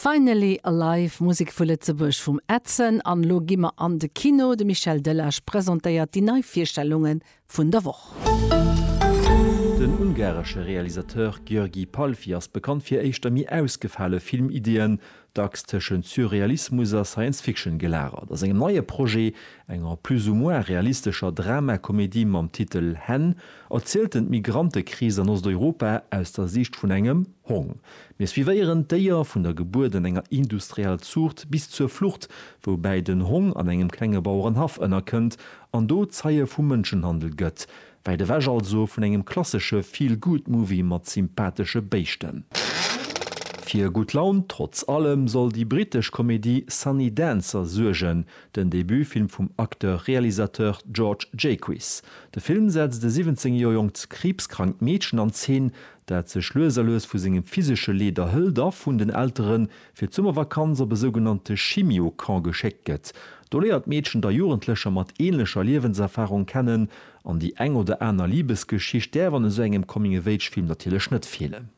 Finally Alive, Musek vu Lëtzebuerg vum Edson an elo gi mer an de Kino. De Michel Delage presentéiert déi nei Virstellunge vun der Woch. Den ungaresche Realisateur György Palffy ass bekannt fir éischter méi ausgefale Filmideeën, dacks tëschent Surrealismus a Science Fiction gelagert. A sengem neie Projet, enger plus ou moins realistescher Drama-Komedie mam Titel Hen, Erzielt en d'Migrantekris an Osteuropa aus der Siicht vun engem Hong. Mir suivéieren d'Déier vun der Gebuert an enger industriell Zuucht bis zur Flucht, woubäi den Hong an engem klenge Bauerenhaff ënnerkënnt an do Zeie vum Mënschenhandel gëtt. Wäit ewech also vun engem klassesche Feel-Good-Movie mat sympathesche Béischten. Fir gutt Laun trotz allem soll déi brittesch Komedie Sunny Dancer suergen, Den Debutfilm vum Acteur-Realisateur George Jaquiss. De Film setzt e 17 Joer jonkt kriibskrankt Meedchen an Zeen, dat sech lues a lues vu sengem physesche Leed erhëlt a vun den Eltere fir d'Summervakanz op e sougenannte Chimio-Camp geschéckt gëtt. Do léiert d'Meedchen da Jugendlecher mat änlecher Liewenserfarung kennen An déi eng oder aner Libesgeschicht däerf an esou engem Coming-of-age-Film natierlech net feelen.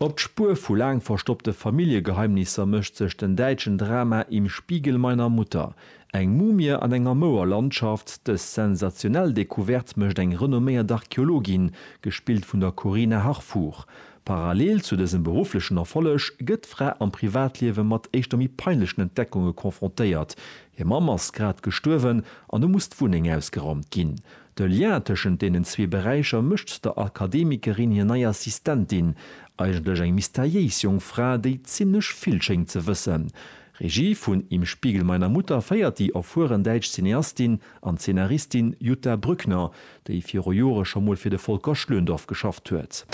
Op d'Spuer vu laang verstoppte Familljegeheimnisser mécht sech den däitschen Drama Im Spiegel meiner Mutter, Eng Mumie an enger mouer Landschaft. Dës sensationell Decouverte mécht eng renomméiert Archeologin, gespillt vun der Corinna Harfouch. Parallel zu dësem berufflechen Erfolleg gëtt d'Fra am Privatliewe mat éischter méi peinlechen Entdeckunge confrontéiert, Hir Mamm ass grad gestuerwen an hu muss d'Wunneng ausgeraumt ginn. De Lien tëschent deenen zwee Beräicher mécht der Akademikerin hir nei Assistentin, eigentlech eng mysteriéis jonk Fra, déi zimmlech vill schéngt ze wëssen. Regie vun Im Spiegel meiner Mutter féiert déi erfueren däitsch Cineastin an Zeenaristin Jutta Brückner, déi viru Jore scho mol fir de Volker Schlöndorff geschafft huet.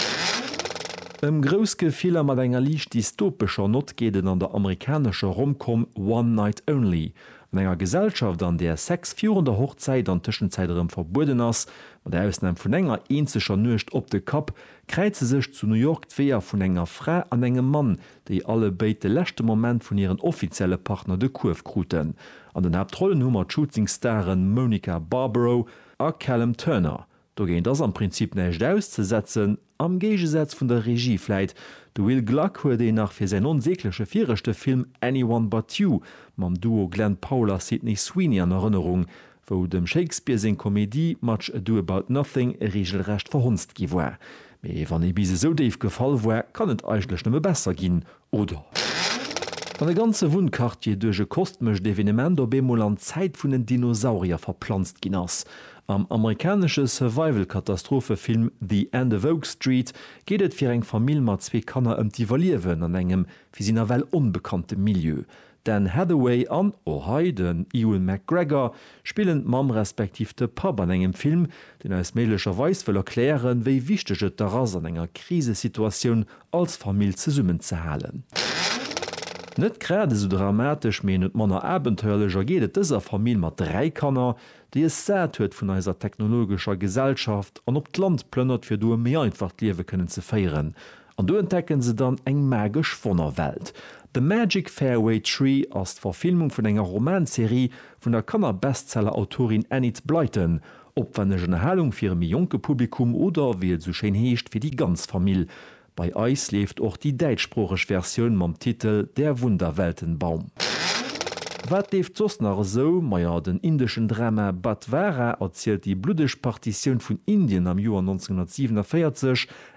Ëm grouss Gefiller mat enger liicht dystopescher Nott geet et an der amerikanescher Rom-Com One Night Only. An enger Gesellschaft, an där Sex virun der Hochzäit an Tëschenzäit erëm verbueden ass, mat Ausnam vun enger eenzeger Nuecht op de Kapp, kräize sech zu New York d'Weeër vun enger Fra an engem Mann, déi alle béid de leschte Moment vun hiren offizielle Partner de Kuerf kruten. An den Haaptrollen hu mer d'Shooting-Stare Monica Barbaro A Callum Turner dogéint ass am Prinzip näischt auszesetzen, am Géigesaz vun der Regie vläit. De Will Gluck huet een nach fir säin onsägleche viregte Film Anyone But You mam Duo Glen Powell a Sydney Sweeney an Erënnerung, wou dem Shakespeare seng Komedie Much Ado About Nothing reegelrecht verhonzt gi war. Mee wann ee bis esou déif gefall war, kann et eigentlech nëmme besser ginn, Oder wann e ganze Wunnquartier duerch e kostmescht Evenement op eemol an d'Zäit vun den Dinosaurier verplanzt ginn ass. Am amerikanesche Survival-Katastrophefilm The End of Oak Street geet et fir eng Famill mat zwee Kanner ëm d'Iwwerliewen an engem fir si nawell onbekannte Milieu. D'Anne Hathaway an, och hei, den Ewan McGregor spillen d'Mamm respektiv de Papp an engem Film, deen eis méiglecherweis wëll erklären, wéi wichteg et dach ass, an enger Krisesituatioun als Famill zesummenzehalen. Net grad esou dramatesch, mee net manner abenteuerlech ergeet et dëser Famill mat dräi Kanner, déi es sat huet vun eiser technologescher Gesellschaft an op d'Land plënnert, fir do e méi einfacht Liewe kënnen ze féieren. An do entdecken se dann eng magesch Wonnerwelt. The Magic Fairway Tree ass d'Verfilmung vun enger Romanserie vun der Kanner-Bestseller-Autorin Enid Blyton. Opwenneg Ënnerhalung fir e méi jonke Publikum oder, wéi et esou schéin heescht, fir déi ganz Famill. Bei eis leeft och déi däitschsproocheg Versioun mam Titel Der Wunderweltenbaum. Wat leeft soss nach esou? Maja, den indeschen Drama Badhwara erzielt déi bluddeg Partitioun vun Indien am Joer 1947,